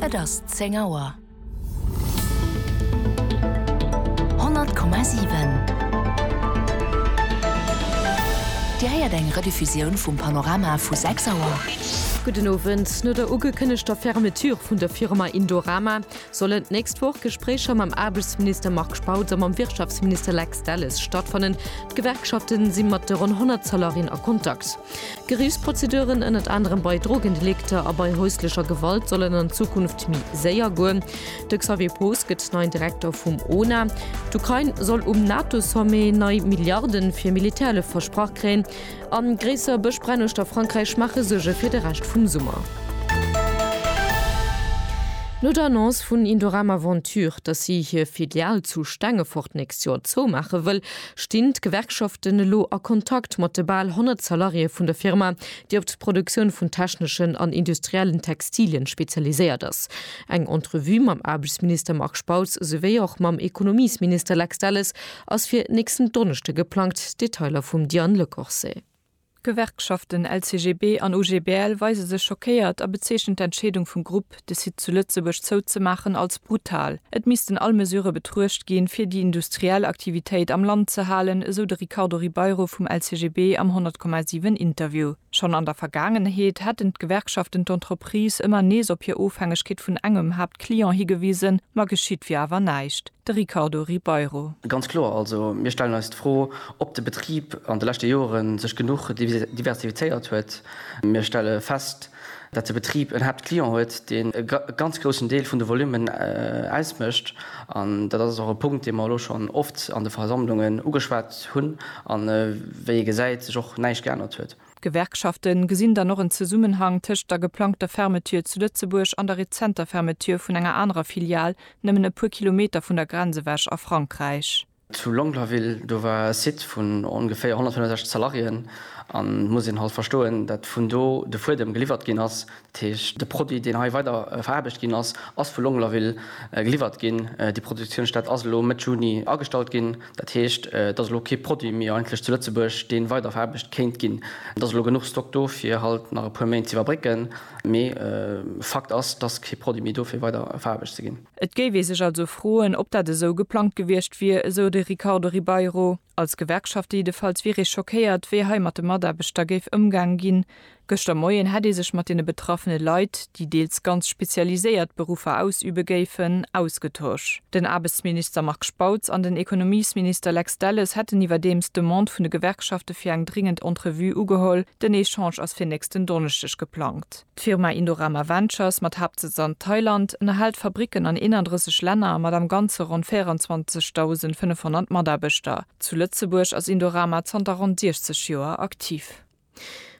Et ass 10 Auer. 100,7 Dir héiert eng Rediffusioun vum Panorama vu 6 Auer. Gudden Owend. No der ugekënnegter Fermeture vun der Firma Indorama sollen d'nächst Woch Gespréicher mam Aarbechtsminister Marc Spautz a mam Wirtschaftsminister Lex Delles stattfannen. D'Gewerkschafte si mat de ronn 100 Salarien a Kontakt. Geriichtsprozeduren, ënnert anerem bei Drogendelikter a bei häuslecher Gewalt, sollen an Zukunft méi séier goen. De Xavier Poos gëtt neien Direkter vum ona. D'Ukrain soll um NATO-Sommet nei Milliarde fir Militärhëllef versprach kréien. A gréisser Bëschbränn uecht a Frankräich maache Suerge fir de Rescht vum Summer. No der Annonce vun Indorama Ventures, datt si hir Filial zu Stengefort d'nächst Joer zoumaache wëll, Stinn d'Gewerkschaften elo a Kontakt mat de bal 100 Salariéë vun der Firma, déi op d'Produktioun vun techneschen an industriellen Textilien spezialiséiert ass. Eng Entrevue mam Aarbechtsminister Marc Spautz souwéi och mam Ekonomiesminister Lex Delles ass fir nächsten Donneschde geplangt, Detailer vum Diane Lecorset. D'Gewerkschaften LCGB an OGBL weise sech schockéiert a bezeechnen d'Entscheedung vum Grupp, de Site zu Lëtzebuerg zouzemaachen, als brutal. Et missten all Mesurë betruecht ginn, fir déi industriell Aktivitéit am Land ze halen, esou de Ricardo Ribeiro vum LCGB am 100,7 Interview. Schonn an der Vergaangenheet hätten d'Gewerkschaften d'Entreprise ëmmer nees op hir Ofhängegkeet vun engem Haaptclient higewisen, ma geschitt wier awer näischt. De Ricardo Ribeiro. Ganz kloer also, mir stellen eis d'Fro, ob de Betrib an de leschte Jore sech genuch diversifizéiert huet. Mir stelle fest, datt de Betrib en Haaptclient huet, deen e ganz groussen Deel vun de Volummen ausmécht. An dat ass och e Punkt, dee mer elo schonn oft an de Versammlungen ugeschwat hunn a wéi ee gesäit, sech och näischt geännert huet. D'Gewerkschafte gesinn dann och en Zesummenhang tëscht der geplangter Fermeture zu Lëtzebuerg an der rezenter Fermeture vun enger anerer Filial nëmmen e puer Kilometer vun der Grenz ewech a Frankräich. Zu Longlaville, do war e Site vun ongeféier 165 Salariéen an et muss een halt verstoen, datt vun do de Fuedem geliwwert ginn ass. Dat heescht, de Produit, deen hei weider veraarbecht ginn ass, ass vu Longlaville geliwwert ginn. Déi Produktiounsstätt ass elo Mëtt Juni agestallt ginn. Dat heescht, et ass elo kee Produit méi eigentlech zu Lëtzebuerg, dee weider veraarbecht kéint ginn. Et ass elo genuch Stock do, fir halt nach e puer Méint z'iwwerbrécken, mee Fakt ass, et ass kee Produit méi do, fir weider veraarbecht ze ginn. Et géif ee sech also froen, ob dat esou geplangt gewiescht wier, esou de Ricardo Ribeiro. Als Gewerkschaft jiddefalls wier ee schockéiert, wéi hei mat de Mataarbechter géif ëmgaang ginn. Gëschter Moien hätt ee sech mat deene betraffene Leit, déi deels ganz spezialiséiert Beruffer ausübe géifen, ausgetosch. Den Aarbechtsminister Marc Spautz an den Ekonomiesminister Lex Delles hätten iwwerdeems d'Demande vun de Gewerkschafte fir eng dringend Entrevue ugeholl. Den Echange ass fir nächsten Donneschdeg geplangt. D'Firma Indorama Ventures, mat Haaptsëtz an Thailand, ënnerhält Fabricken an 31 Länner mat am Ganze ronn 24.500 Mataarbechter. Zu Lëtzebuerg ass Indorama zanter ronn 60 Joer aktiv.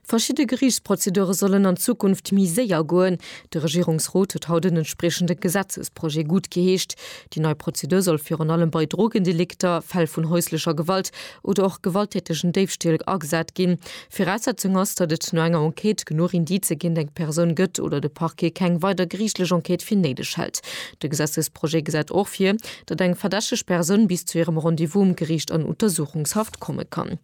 Verschidde Geriichtsprozedure sollen an Zukunft méi séier goen. De Regierungsrot huet haut en entspriechende Gesetzesprojet guttgeheescht. Déi nei Prozedur soll virun allem bei Drogendelikter, Fäll vun häuslecher Gewalt oder och gewalttätegen Déifstähl agesat ginn. Viraussetzung ass, datt et no enger Enquête genuch Indicë géint eng Persoun gëtt oder de Parquet keng weider geriichtlech Enquête fir néideg hält. De Gesetzesprojet gesäit och vir, datt eng verdächteg Persoun bis zu hirem Rendez-vous um Geriicht an Untersuchungshaft komme kann.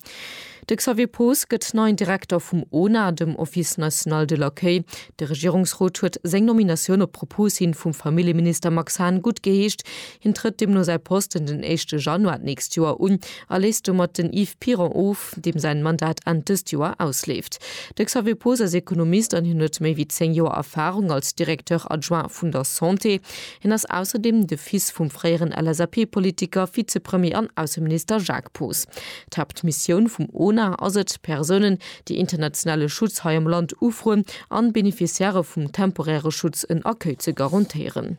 De Xavier Poos gëtt neien Direkter vum ona, dem Office national de l'accueil. De Regierungsrot huet seng Nominatioun op Propos hin vum Familljeminister Max Hahn guttgeheescht. Hien trëtt deemno säi Posten den éischte Januar d'nächst Joer un a léisst domat den Yves Piron of. Kemp, deem säin Mandat Enn dëst Joer ausleeft. De Xavier Poos ass Ekonomist an hien huet méi wéi 10 Joer Erfahrung als Directeur adjoint vun der Santé. Hien ass ausserdeem de Fils vum fréieren LSAP-Politiker, Vizepremier an Ausseminister Jacques Poos. D'Haaptmissioun vum ONA ass et, Persounen, déi internationale Schutz hei am Land ufroen an Beneficiairë vum temporäre Schutz en Accueil ze garantéieren.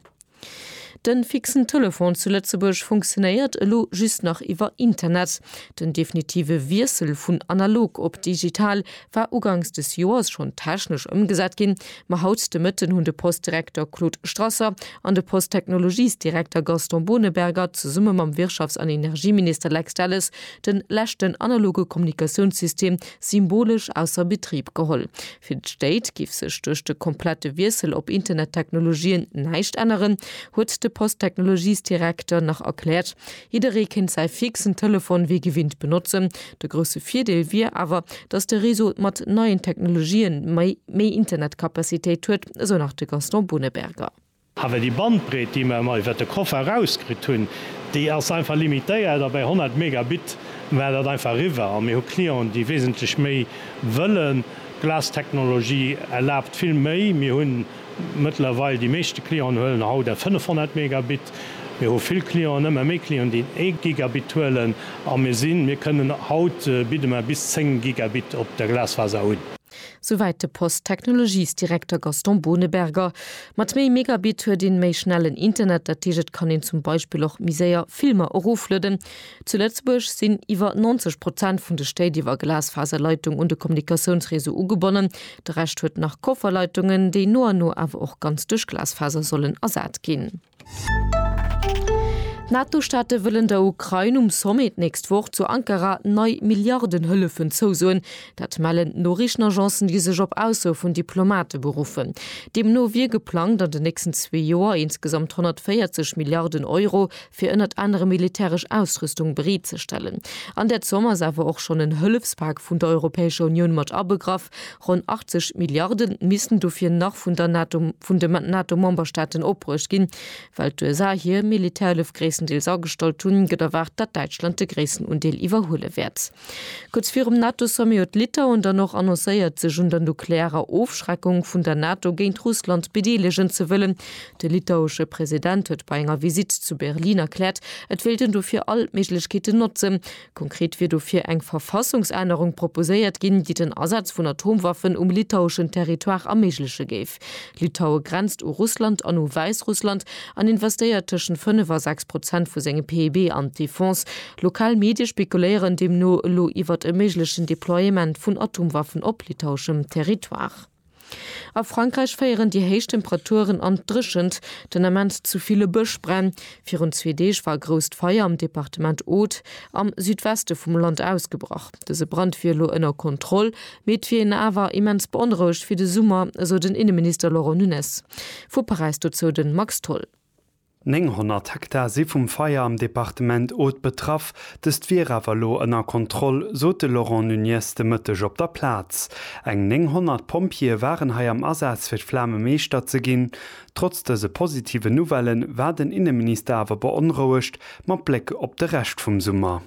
Den fixen Telefon zu Lëtzebuerg funktionéiert elo just nach iwwer Internet. Den definitive Wiessel vun analog op digital war ugangs des Joers schonn technesch ëmgesat ginn, ma haut de Mëtten hunn de Post-Direkter Claude Strasser an de Post-Technologies-Direkter Gaston Boneberger zesumme mam Wirtschafts an Energieminister Lex Delles de leschten analoge Kommunikatiounssystem symbolesch ausser Betrib geholl, Fir d'Stéit giff sech duerch de komplette Wiessel op Internettechnologien näischt änneren, huet de Posttechnologiesdirekter nach erkläert. Jidderee kéint säi fixen Telefon wéi gewinnt benotzen. De grousse Virdeel wier awer, datt de Réseau mat neien Technologien méi Internetcapacitéit huet, esou nach de Gaston Boneberger. Awer déi Bandbreet, déi mer ëmmer iwwert de Koffer erauskritt hunn, déi ass einfach limitéiert a bei 100 Megabit war dat einfach eriwwer. A mir hu Clienten, déi wesentlech méi wëllen. D'Glas-Technologie erlaabt vill méi. Mir hu mëttlerweil, déi meeschte Clienten huelen haut eng 500 Megabit. Mir hu vill Clienten, ëmmer méi Clienten, déi en ee Gigabit huelen. A mir sinn, mir kënnen, haut bidde mer bis 10 Gigabit op der Glasfaser un. Souwäit de Post-Technologies-Direkter Gaston Boneberger. Mat méi Megabit huet een méi schnellen Internet, dat heescht et kann een zum Beispill och méi séier Filmer eroflueden. Zu Lëtzebuerg sinn iwwer 90 Prozent vun de Stéit iwwer Glasfaserleitung un de Kommunikatiounsreseau ugebonnen. De Rescht huet nach Kofferleitungen, déi no an no awer och ganz duerch Glasfaser sollen ersat ginn. D'NATO-Staate wëllen der Ukrain um Sommet d'nächst Woch zu Ankara nei Milliardenhëllefen zousoen. Dat mellen d'Noriichtenagencen, déi sech op Ausso vun Diplomate beruffen. Deemno wier geplangt, an den nächsten zwee Joer insgesamt 140 Milliarden Euro fir ënnert anerem militäresch Ausrüstung bereetzestellen. An där Zomm ass awer och schonn en Hëllefspak vun der Europäescher Unioun mat abegraff, Ronn 80 Milliarde missten dofir nach vun der NATO, vun de NATO-Memberstaaten opbruecht ginn. Well d'USA hir Militärhëllef gréisstendeels agestallt hunn, gëtt erwaart, datt Däitschland de gréissten Undeel iwwerhuele wäert. Kuerz virum NATO-Sommet huet Litauen dann och annoncéiert, sech un der nuklearer Ofschreckung vun der NATO géint Russland bedeelegen ze wëllen. De litauesche President huet bei enger Visitt zu Berlin erkläert, et wéilt en dofir all d'Méiglechkeeten notzen, Konkret wier dofir eng Verfassungsännerung proposéiert ginn, déi den Asaz vun Atomwaffen um litaueschen Territoire erméigleche géif. Litaue grenzt u Russland an u Wäissrussland an investéiert tëschent 5 a 6 Prozent vu sengem PIB an d'Defense. Lokal Medie spekuléieren deemno elo iwwert e méiglechen Deploiement vun Atomwaffen op litaueschem Territoire. A Frankräich féieren déi héich Temperaturen an d'Dréchent, den Ament zu ville Bëschbränn. Virun zwee Deeg war e grousst Feier am Departement Aude am Südweste vum Land ausgebrach. Dëse Brand wier elo ënner Kontroll, mee et wier een awer immens beonrouegt fir de Summer, esou den Inneminister Laurent Nunez vu Paräis. Dozou de Max Tholl. 900 Hektar si vum Feier am Departement Aude betraff. Dëst wier awer elo ënner Kontroll, sot de Laurent Nunez de Mëtteg op der Plaz. Eng 900 Pompjeeë waren hei am Asaz fir d'Flame meeschter ze ginn. Trotz dëse positiven Nouvelle war den Inneminister awer beonrouegt mat Bléck op de Rescht vum Summer.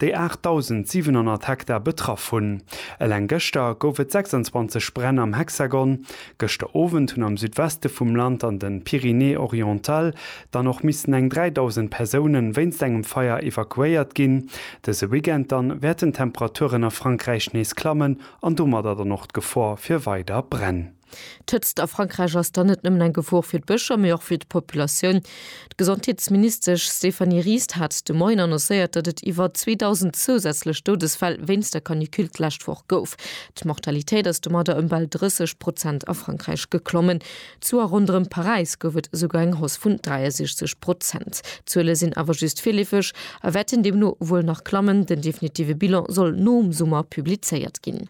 déi 8.700 Hektar betraff hunn. Eleng gëschter gouf et 26 Bränn am Hexagon. Gëschter Owend hunn am Südweste vum Land an den Pyrénées-Orientales dann och missen eng 3.000 Persoune wéinst engem Feier evakuéiert ginn. Dëse Weekend dann wäerten d'Temperaturen a Frankräich nees klammen an domadder dann och d'Gefor fir weider Bränn. D'Hëtzt a Frankräich ass dann net nëmmen eng Gefor fir d'Bëscher, mee och fir d'Populatioun. D'Gesondheetsministesch Stéphanie Ries hat de Moien annoncéiert, datt et iwwer 2.000 zousätzlech Doudesfäll wéinst der Canicule d'lescht Woch gouf. D'Mortalitéit ass domadder ëm bal 30 Prozent a Frankräich geklommen. Zu a ronderëm Paräis gouf et esouguer eng Hausse vun 63 Prozent. D'Zuele sinn awer just virleefeg a wäerten deemno wuel nach klammen. Den definitive Bilan soll nom Summer publizéiert ginn.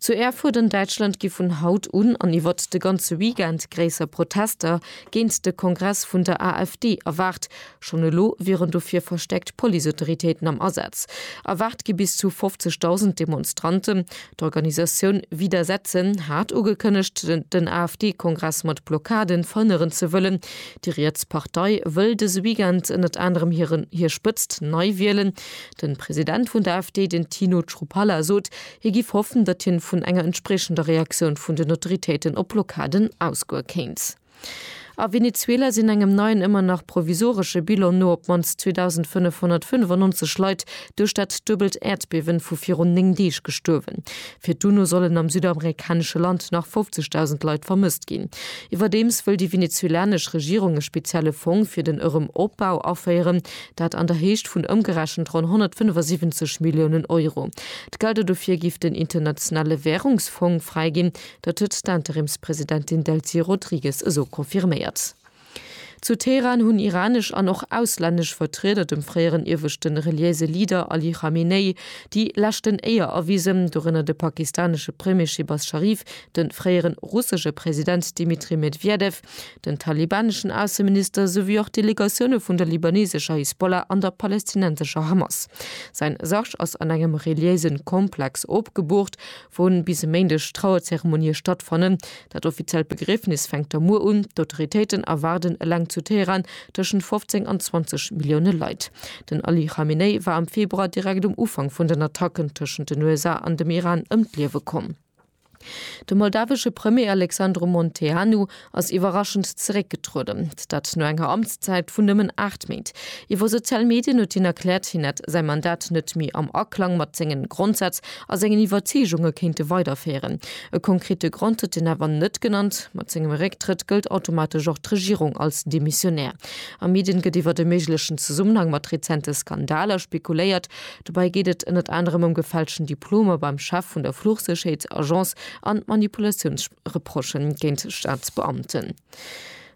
Zu Erfurt an Däitschland gi vun haut un an iwwert de ganze Weekend gréisser Protester géint de Kongress vun der AfD erwaart. Schonn elo wieren dofir verstäerkt Policeautoritéiten am Asaz. Erwaart gi bis zu 50.000 Demonstranten. D'Organisatioun Widersetzen hat ugekënnegt, den AfD-Kongress mat Blockaden verhënneren ze wëllen. Déi riets Partei wëll dëse Weekend ënnert anerem hir Spëtzt nei wielen. Den President vun der AfD, den Tino Chrupalla sot, hie giff hoffen, datt hien vun enger entspriechender Reaktioun vun den Autoritéiten op Blockaden ausgoe kéint. A Venezuela sinn engem neien, ëmmer nach provisoresche Bilan no op d'mannst 2.595 Leit duerch dat duebelt Äerdbiewen vu virun 9 Deeg gestuerwen. Fir d'UNO sollen am südamerikanesche Land nach 50.000 Leit vermësst ginn. Iwwerdeems wëll déi venezuelanesch Regierung e spezielle Fong fir den Erëm Opbau aféieren. Dat an der Héicht vun ëmgerechent ronn 175 Milliounen Euro. D'Gelder dofir giff den Internationale Währungsfong fräiginn. Dat huet d'Interimspresidentin Delcy Rodrigues esou confirméiert. Zu Teheran hunn iranesch an och auslännesch Vertrieder dem fréieren ieweschte reliéise Leader Ali Khamenei déi leschten Éier erwisen, dorënner de pakistanesche Premier Shehbaz Sharif, de fréiere russesche President Dmitri Medwedew, Den talibaneschen Ausseminister souwéi och Delegatioune vun der libanesescher Hisbollah an der palästinensescher Hamas. Säin Sarg ass an engem reliéise Komplex opgeboort, wou bis e Méindeg Trauerzeremonie stattfannen. Dat offiziellt Begriefnis fänkt da muer un. D'Autoritéiten erwaarden eleng zu Teheran tëschent 15 an 20 Millioune Leit. Den Ali Khamenei war am Februar direkt um Ufank vun den Attacken tëschent den USA an dem Iran ëm d'Liewe komm. De moldawesche Premier Alexandru Munteanu ass iwwerraschend zeréckgetrueden, dat no enger Amtszäit vun nëmmen 8 Méint. Iwwer sozial Medien huet hien erkläert, hien hätt säi Mandat net méi am Aklang mat senge Grondsätz a sengen Iwwerzeegunge kéinte weiderféieren. E konkrete Grond huet hien awer net genannt. Mat sengem Récktrëtt gëllt automatesch och d'Regierung als demissionär. A Medien gëtt iwwert e méiglechen Zesummenhang mat rezente Skandaler spekuléiert. Dobäi geet et ënnert anerem ëm gefälschten Diplomer beim Chef vun der Fluchsécherheetsagence an Manipulatiounsreproche géint Staatsbeamten.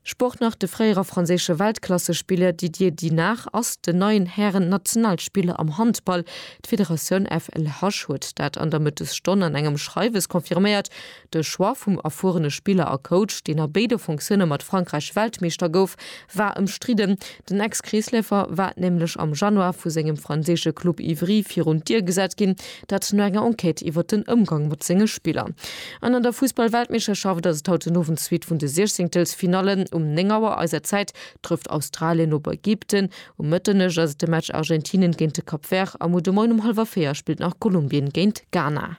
Sport nach, De fréiere franséische Weltklassespiller Didier Dinard ass den neien Hären-Nationalspiller am Handball. D'Federatioun FLH huet dat an der Mëttesstonn an engem Schreiwes confirméiert. De Choix vum erfuerene Spiller a Coach, deen a béide Fonctioune mat Frankräich Weltmeeschter gouf, war ëmstridden. Den Ex-Kreesläufer war nämlech am Januar vu sengem franséische Club Ivry virun d'Dier gesat ginn, dat no enger Enquête iwwer den Ëmgang mat senge Spiller. An an der Fussball-Weltmeeschterschaft ass et haut den Owend d'Suite vun de Siechzéngtelsfinallen. Um 9 Auer eiser Zäit trëfft Australien op Ägypten, um Mëtternuecht ass et de Match Argentinien géint de Cap Vert a muer de Moien um hallwer 4 spillt nach Kolumbien géint Ghana.